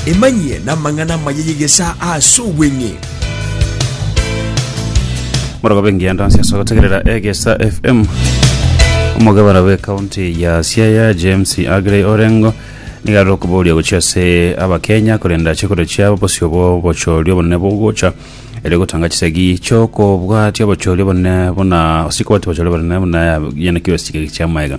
Emanyie namang'ana amaya y'egesaa ase obweng'e. Morogobe engianda nse ase gotegerera egesa FM omogabana bw'ekaunti ya Siaya James Agrey Orengo niga arore okoboria gochia ase abakenya korenda chikoro chiabo bosio bw'obochori obonene bogocha ere gotanga chisegi chiokobwatia obochori obonene buna sikobwatia obochori obonene buna yanekiwe chigegi chiamaega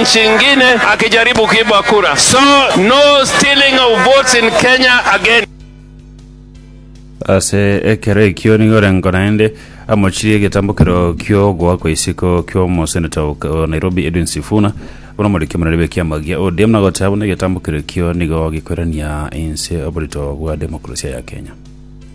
chingine akijaribu kuiba kura so no stealing of votes in Kenya again. Ase ekero ekio nigo orengo naende amochirie egetambokero ki'ogoa kwa isiko ki'omoseneta o o Nairobi Edwin Sifuna buna omoriki omonene bw'ekiama gia ODM na goteba buna egetambokero ekio nigo gikoirania inse oborito bwa demokrasia ya Kenya.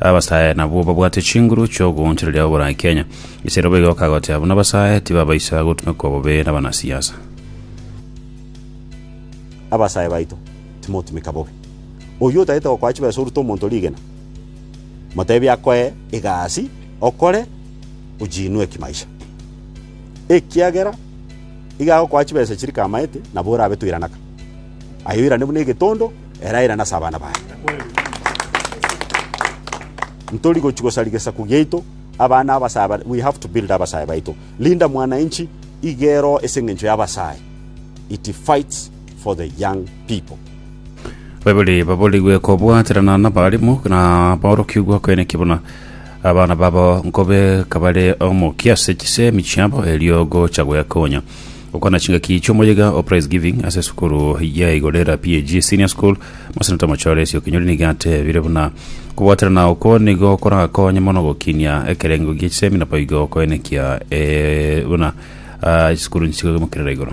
Abasae nabwo babwate chinguru chi'ogoonchoreria oborai Kenya. Ise robo igo kagoteba buna abasae tibabaisa gotumekwa bobe nabanasiasa. Abasae baito timotumeka bobe. Oyio otagete gokoa chibesa orute omonto rigena, motebie akoe egasi okore ojiinwe ekimaisha. Ekiagera iga agokoa chibesa chiri kamaete nabo orabe toiranaka. Aye oirane buna egetondo. Erairana ase abana baye. Ntori gochi gosari gesaku giaito, abana abasae bare, we have to build abasae baito. Linda mwananchi igero ase engencho y'abasae. It fights for the young people. Baibuli baborigwe kobwaterana n'abarimu na aborokigwa kweneki buna abana babo nkobe kabare omokia ase chisemi chiabo erio gocha gwekonya Gokwana chingaki chi'omoyega o Praise Giving ase esukuru ya Igorera PAG Senior School, Moseneta Mochoresio Kinyori nigo atebire buna kobwaterana okwo nigo korakonye mono gokinia ekerengo gie chisemi na boigo koenekia eh, buna ah, chisukuru nchigoimokerera igoro.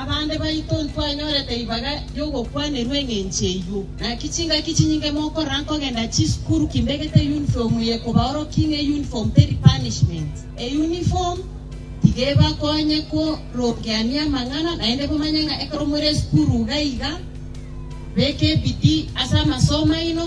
Abande baito ntwanyorete ribaga ri'ogokwanerwa engencho eyio. Naki chingaki chinyinge mokorora nkogenda chisukuru kimbegete eyunifomu eye kobaorokia ng'a eyunifomu teri punishment. Eyunifomu tiga ebakonye korogeania amang'ana, naende bomanye ng'a ekero more esukuru iga iga, beka ebidii ase amasomo aino.